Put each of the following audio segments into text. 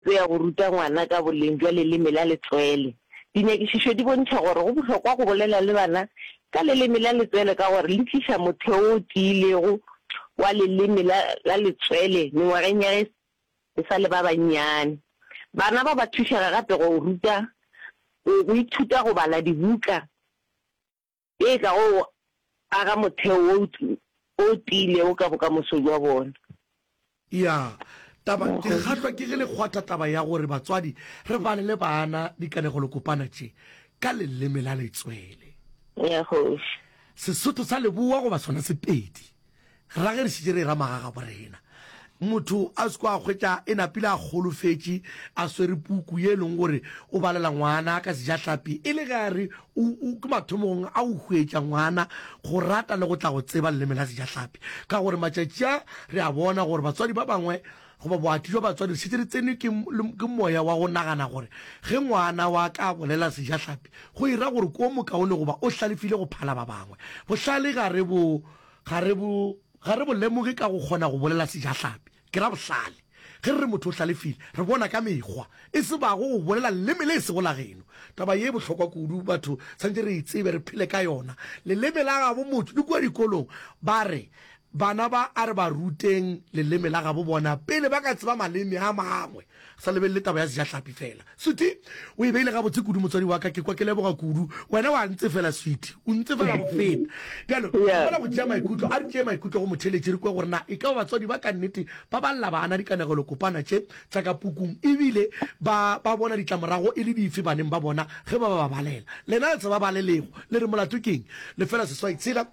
Go ya go ruta ngwana ka boleng bja leleme la letswele. Dinyakišišo di bontšha gore go bohlokwa go bolela le bana ka leleme la letswele ka gore le tliša motheo o tiilego wa leleme la letswele mengwageng ya ge e sa le ba bannyane. Bana ba ba thušega gape go ithuta go bala dibuka e ka go aga motheo wo o tiilego ka bokamoso bja bona. Ya taba, ke kgahlwa ke ge le kgwatha taba ya gore batswadi re balele bana dikanegelokopana tše ka leleme la letswele. Ya kgoši. Sesotho sa Leboa goba sona Sepedi. Ra ge re šetše re era magagabo rena, motho a se ko a hwetša e napile a golofetše a swere puku ye e leng gore o balela ngwana ka sejahlapi e le ge a re o, o ke mathomogong a o hwetša ngwana go rata le go tla go tseba leleme la sejahlapi. Ka gore matšatši a re a bona gore batswadi ba bangwe goba boati jwa batswadi re šetše re tsenwe ke, ke moya wa go nagana gore ge ngwana wa ka a bolela sejahlapi go e ra gore ke o mokaone goba o hlalefile go phala ba bangwe. Bohlale ga re bo ga re bo, ga re bo lemoge ka go kgona go bolela sejahlapi. Ke ra bohlale. Ge re re motho o hlalefile, re bona ka mekgwa, e se bago go bolela leleme le e sego la geno. Taba ye e bohlokwa kudu, batho swanetše re e tsebe, re phele ka yona. Leleme la gabo motho, le kua dikolong ba re, Bana ba, a re ba ruteng leleme la gabo bona pele ba ka tseba maleme a mangwe. Sa lebelele taba ya sejahlapi fela. Sweetie, o e beile gabotse kudu, motswadi wa ka. Ke kwa ke leboga kudu. Wena wa ntsefela, Sweetie. O ntsefela go feta. Bjalo, re kgona go tšea maikutlo. A re tšee maikutlo go motheletši re kwe gore na e ka ba batswadi ba ka nnete ba ba lla bana dikanegelokopana tše tša ka pukung e bile ba ba bona ditlamorago e le dife baneng ba bona ge ba ba balela. Lena le tseba ba le lego. Le re molato ke eng? Lefela seswai tshela.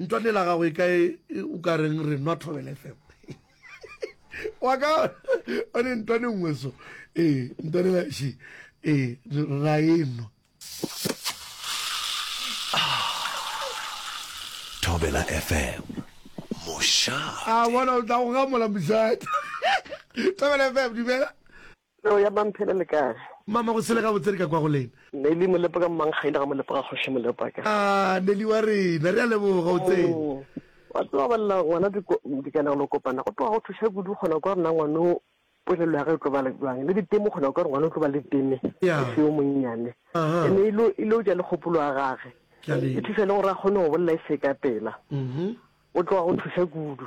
Ntlwane la gago e ka e o ka reng re nwa Thobela FM. Wa ka o ne ntlwane nngwe so. Eh, ntlwane la shi. Eh, ra e nwa. Thobela FM. Mosha. A bona o tla go gamola mosha. Thobela FM, dumela. Peo ya mamphe le lekae. Mama go sele gabotse re ka kwa go lena. Nelly molepo ka mmankgaile ga molepo ga kgoši molepo a ka. Aah Nelly wa rena re a leboga o tsene. Wa tseba ba lela ngwana dikanegelo kopana go tloga go thuša kudu kgona kwa rena ngwano polelo ya ge e tlo ba le jwang le diteme kgona kwa re ngwana o tlo ba le teme e se yo monnyane ene ilo ilo ja le kgopolo ya gage e thuša le gore a kgone go bolela e se ka pela o tloga go thuša kudu.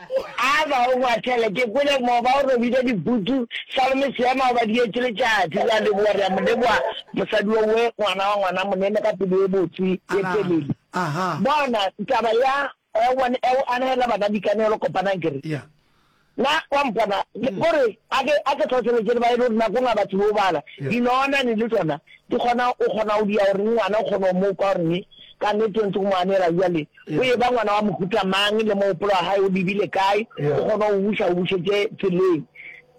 A ba o ngwasele, ke kwele mo ba o robile dibutu, sa le mo seema o ba dietše letšatši. Re a leboga, re a mo leboga mosadi wo we, ngwana wa ngwana monene ka pelo ye botse, ye telele. Bona, taba ya, o bone, e o anegela bana dikanegelo kopanang, ke re, Na wa mpona? Go re, a ke, a ke hlohleletše le ba e le gore nakong ga ba tsebe go bala, dinonane le tšona di kgona, o kgona go dia gore ngwana o kgone go mo kwa gore, Ka nnete o ntse o mo anegela bjale. O eba ngwana wa mohuta mang, le mogopolo wa gae o lebile kae, o kgone go buša, o bušetše tseleng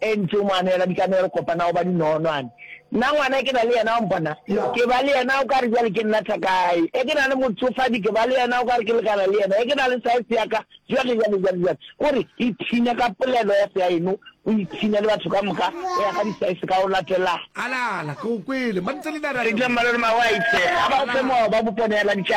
e ntse o mo anela dikanegelo, kopana go ba dinogonwane. Nna ngwana e ke na le yena, wa mpona, ke ba le yena o ka re bjale ke nna thaka ya gae, e ke na le motsofadi, ke ba le yena o ka re ke lekana le yena, e ke na le saese ya ka, bjale, bjale, bjale, bjale. O re, Ipshine ka polelo ya seaeno, o ipshine le batho ka moka, go ya ka disaese ka go latelana. Ala, ala, ke go kwele. Mantselena, re a leboga. Eupša Malome Magoe a itše, Ga ba go fe mowa, ba go poneela ditšabo.